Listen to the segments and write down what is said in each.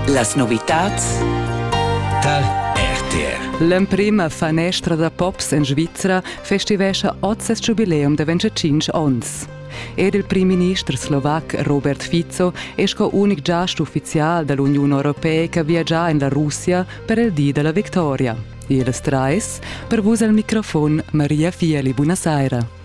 Las novitads tar RTR. L'emprima fanestra da pops en Svizra festivescha oz ses giubileum da 25 onns. Ed il prim-minister slovac Robert Fico è sco unic giast uffizial da l'Uniun Europeica viagià en la Russia per il di della victoria. Ils trais, per vus al microfon Maria Fieli, buonasera.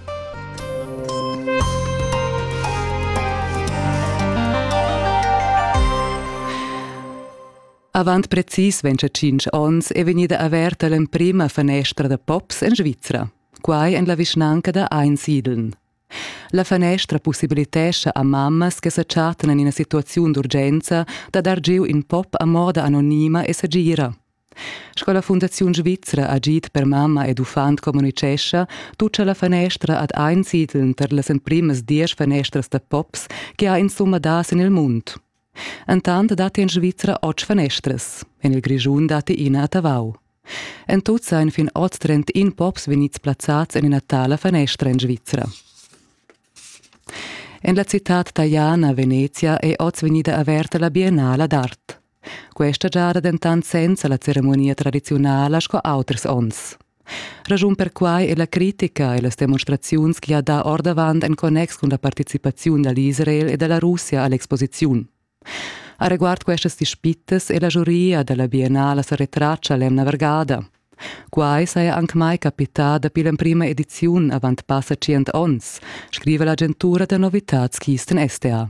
Avant precis 25 onns è vegnida averta l'emprima fanestra da pops en Svizra, quai en la vischnanca da Einsiedeln. La fanestra possibilitescha a mammas che sa chattan en ina situaziun d'urgenza da dar giu in pop a moda anonima e sagira. Sco la Fundaziun svizra agid per mamma ed uffant communitgescha, tutscha la fanestra ad ein siedeln per las emprimas diesch fanestras da pops che ha insumma dà sin il mund. Entant datti en Svizra otg fanestras. En il Grischun datti ina a Tavau. En tut seien fin oz 31 pops vegnids plazzats en ina tala fanestra en Svizra. En la citad taliana Venezia è oz vegnida averta la Biennala d'art. Questa giada dentant senza la ceremonia tradiziunala sco auters onns. Raschun per quai è la critica e las demonstraziuns che ha dà ordavant en connex cun la participaziun da l'Israel e da la Russia a l'exposiziun. A riguard questas dispittas è la giuria da la Biennala sa retratscha l'emna vargada. Quai saja anc mai capità dapi l'emprima ediziun avant passa tschient onns, scriva l'agentura da novitads Kisten STA.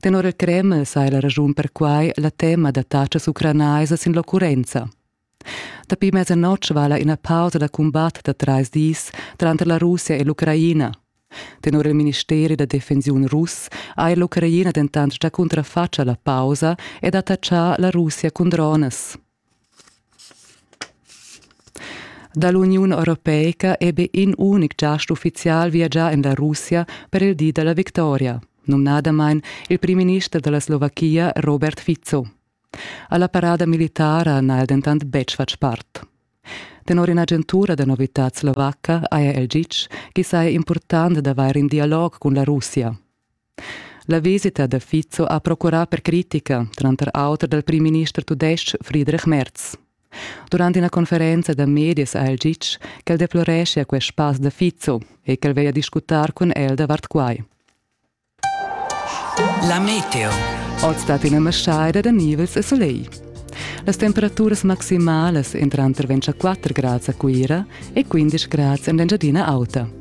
Tenor il Kreml saja la raschun per quai la tema da tatschas ucranaisas sin l'occurrenza. Dapi mezzanotg vala ina pausa da cumbat da trais dis tranter la Russia e l'Ucraina. Tenor il ministeri da defensiun russ ha l'Ucraina dentant già cuntrafatg a la pausa ed attachà la Russia cun dronas. Dall'Uniun europeica è be in unic giast uffizial viagià en la Russia per il di dalla victoria, numnadamain il primminister dalla Slovachia Robert Fico. Alla parada militara n'ha el dentant betg fatg part. Tenor in'agentura da novitad slovacca, ARL GIC, chi saja impurtant d'avair in dialog cun la Russia. La visita da Fico ha procurà per critica, tranter auter dal primminister tudestg Friedrich Merz. Durant ina conferenza da medias ha el ditg ch'el deploreschia quest pass da Fico e ch'el veglia discutar cun el davart quai. La meteo. Oz stat ina maschaida da nivels e soleil. Las temperaturas maximalas entran tranter 24 grads a Cuira e 15 grads en l'Engiadina Auta.